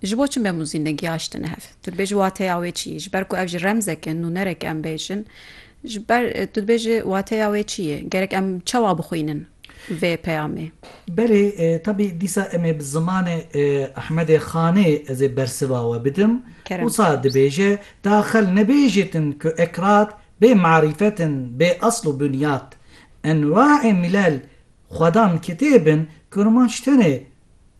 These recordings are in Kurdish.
Ji bo çi memûzîn negihaştine hev? Tu dibêjî wateya wê çi ye? Ji ber ku ev ji remzek e nûnerek em bêjin. Ji ber tu dibêjî wateya wê çi ye? Gerek em çawa bixwînin vê peyamê? Belê, tabî dîsa em ê bi zimanê Ehmedê Xanê ez ê bersiva we bidim. Wisa dibêje, Daxel nebêjîtin ku Ekrat bê marîfet in, bê esl û bunyat. Enwaê milel xwedan kitêb in, kurmanc tenê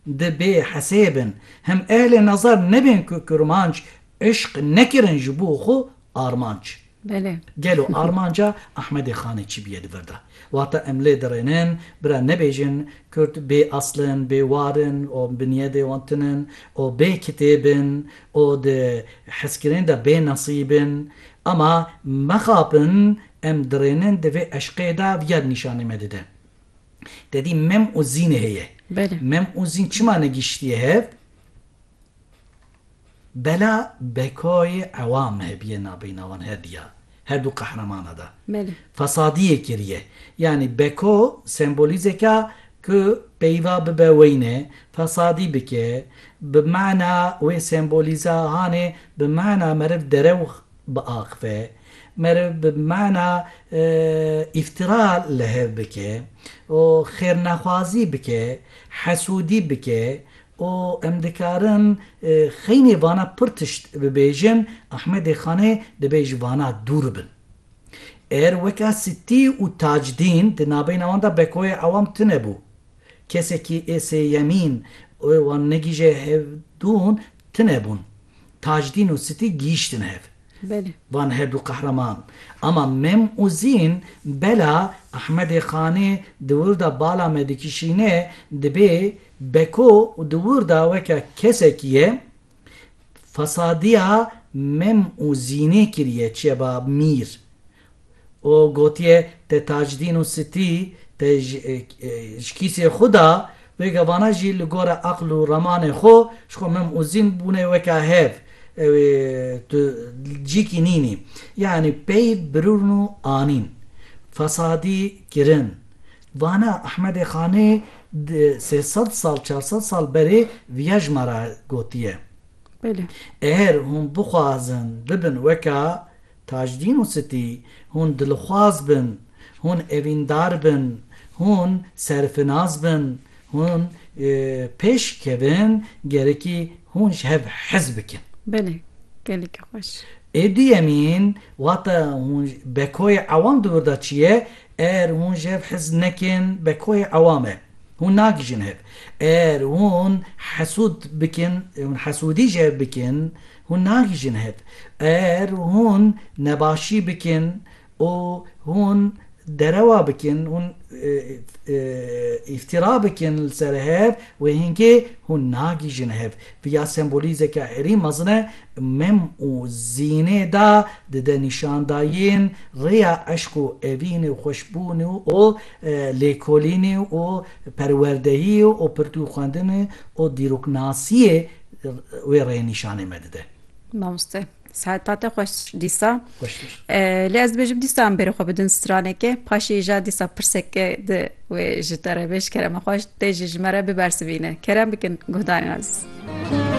Dibê hesê bin him ehlê nazar nebên ku kurmanc îşq nekirin ji bo xwe armanc. Belê. Gelo armanca Ahmedê Xanê çi bûye di vir de? Wata em lê dirênin bira nebêjin kurd bê asl in, bê war in û binyedê wan tun in û bê kitêb in û di hezkirinê de bê nesîb in. Ama mexapin em dirênin di vê eşqê de viyad nîşanê me dide. Te dî mem û zînê heye. Mem û zîn çima negîştiye hev? Bela bekayê ewam hebiye nabeyna wan her diya, her du qehramana de. Fesadiyê kiriye. Yanî beko sembolîzeka ku peyva bibe weyne, fesadî bike, bi mana wê sembolîza hanê bi mana meriv derew biaxive, meriv bi mana îftira li hev bike û xêrnexwazî bike, hesûdî bike û em dikarin xeynê vana pir tişt bibêjin, Ahmedê Xanê dibê ji vana dûr bin. Êr weka Sittî û Tacdîn di nabeyna wan de Bekoyê Ewam tune bû. Kesekî ê sêyemîn û wan negîje hev dûn tine bûn. Tajdîn û Sitî gihîştin hev. Van her dû qehreman ama Mem û Zîn bela Ehmedê Xanê di wir de bala me dikişîne dibê beko û di wir de weke kesekî ye fesadîya Mem û Zînê kiriye çiye ba Mîr. û gotiye te Tacidîn û Sitî te ji kîsê xwe da, wê gevana jî li gora aql û ramanê xwe ji xwe mim û zîn bûne weka hev, ew ê tu cîkî nînî. Yanî peyv birûn û anîn, fesadî kirin. Vana Ehmedê Xanê di sê sed sal, çar sed sal berê viya ji me re gotiye. Belê. Eher hûn bixwazin bibin weka Tajdîn û Sitî, Hûn dilxwaz bin, hûn evîndar bin, hûn serfinas bin, hûn pêş kevin, gerekî hûn ji hev hez bikin. Belê, gelekî xweş. Ê duyemîn, wata hûn bekoyê ewam di wir de çi ye, eger hûn ji hev hez nekin, bekoyê ewam e. Hûn nagihîjin hev. Eger hûn hesûd bikin, hûn hesûdî ji hev bikin, Hûn nagihîjin hev. Eger hûn nebaşî bikin û hûn derewa bikin, hûn îftîra bikin li ser hev, wê hingê hûn nagihîjin hev. Vî ya sembolîzeke herî mezin e, mem û zînê da dide nîşandayîn rêya eşq û evînê û xweşbûnê û lêkolînê û perwerdehiyê û pirtûkxwendinê û dîroknasiyê, wê rê nîşanê me dide. Mamoste sehetat te xweş dîsa lê ez dibêjim dîsa em bêrê xwe bidin stranekê paşê ja dîsa pirseke di wê ji te re bêj kerema xweş tê jî ji me re bibersivîne kerem bikin guhdarên ez.